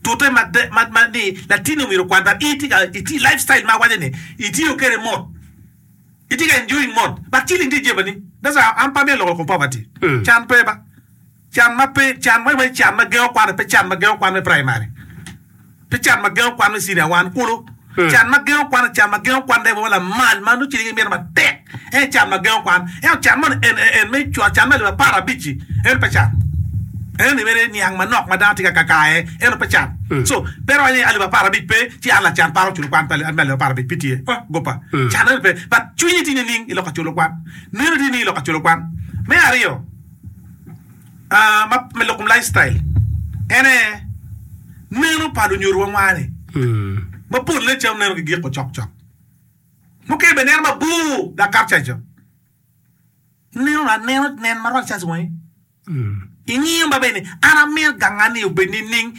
Tute ma de ma ma ni latinni omyero okwan but i tye ka iti life style ma waco ni i tiyo kede mot i tye ka enjoying mot but ciling tye ijeba ni that's why an pe amyero loko kom poverty can pe ba can ma pe can ma iwaco ni can ma gengo kwan aye pe can ma gengo kwan me primary pe can ma gengo kwan me senior one kulu. Can ma gengo kwan, Can ma gengo kwan lebowa lamal ma nongo cwinye gimito matek. En can ma gengo kwan. Ento can man en me cwak, can me alip apar abic-ci en pe can. En ni mere niang manok ma dano tye ka kaka aye, ento pe can. So, pe iwac ni alip apar abic pe, ci an lacan paro culo kwan me alip apar abic, pe tye. Oh, goppa. Can eno pe. But cwinyi tye nining i lok ka culo kwan? Nino tye nining i lok ka culo kwan? Me aryo. me lok kom life style en aye neno pa lunyodo wa ngwani ma polle calo neno ki giko cok cok mukene bene neno ma bor dok kato ca co neno anena nen ma rwod ca wangi ingiyo ma bene an amito ganga ni obed ni ning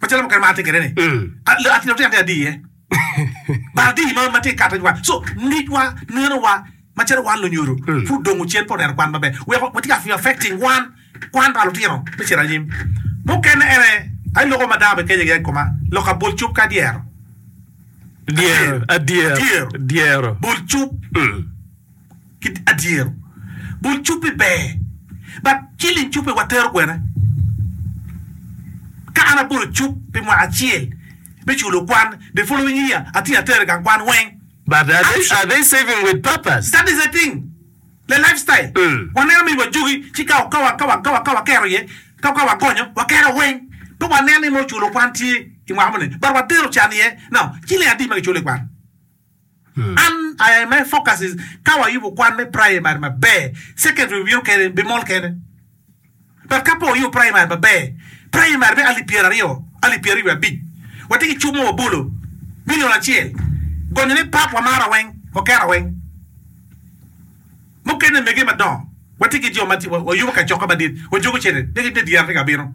Macalo mukene ma atye kwede ni, atino tye atir iye. Bal di ma ma tye ka kato wa. So, ngecwa, nenowa, macalo wan lunyodo, pud dong ocen pe oneno kwan maber. Weko watye ka affecting kwan, kwan pa lutino me cito anyim. Mukene en aye, aye loko ma dano bikece giya i koma, lok ka bol cub ka dyero. Dyero, adyero, Dyero. dyero. Bol cub. ki adyero bul cuppi ber but ciling cuppi wa tero kwene ka an abolo cup pi mwaka acel me culo kwan the following year atye atere gang kwan weng But are they, are they saving with purpose? That is the thing the life style wa neno ni wa jogi ci ka ka wa ka wa ka wa ka wa kero iye ka ka wa gonyo wa kero weng pe wa nen ni nongo culo kwan tye imwaka moni but wa tero can iye now ciling adi ma ki culo ikwan. An aye my focus is ka wayubo kwan me primary maber, secondary obino kene bimol kene but ka pe wayubo primary maber, primary me alip pyera aryo, alip pyera aryo wiye abic watye ki cuk mo wabolo million acel gonyo ne part wamara weng wakera weng mukene mege madongo watye ki jo ma wayubo kacoka madit wajogo cene ne dyere tye ka bino.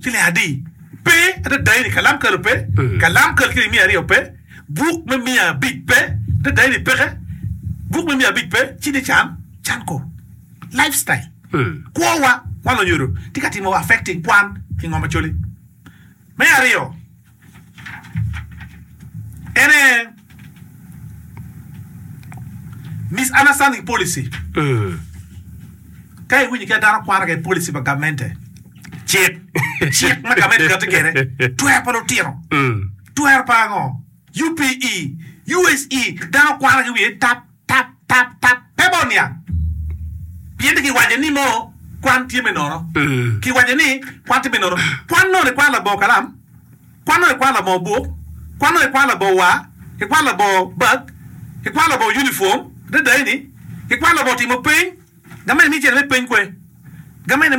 Cilic adi pe adada eni, kalam kalo pe, kalam kalo cilic miya aryo pe, buk me miya abic pe, adada eni peke, buk me miya abic pe, ci ni can, can ko. Life style, kwo wa, wan onyodo tye ka timo wa affecting kwan ingo macoli. Me aryo. En aye misunderstanding policy. Ka iwinyo kit ma dano kwano kwede policy pa gamente, cik, cik ma gamente kati kwede, twero pa lutino, twero pa ango, UPE, USE, dano kwano ki wiye tap. Tap, tap, tap, pe bot niang. Pien giwaco ni nongo kwan tye me nono. Giwaco ni kwan tye me nono. Kwan nongo ikwano labongo kalam, kwan nongo ikwano labongo buk, kwan nongo ikwano labongo war, ikwano labongo bag, ikwano labongo unifom, adada-ni, ikwano labongo timo peny, gamente ni icito me peny kwe, gamente ni me.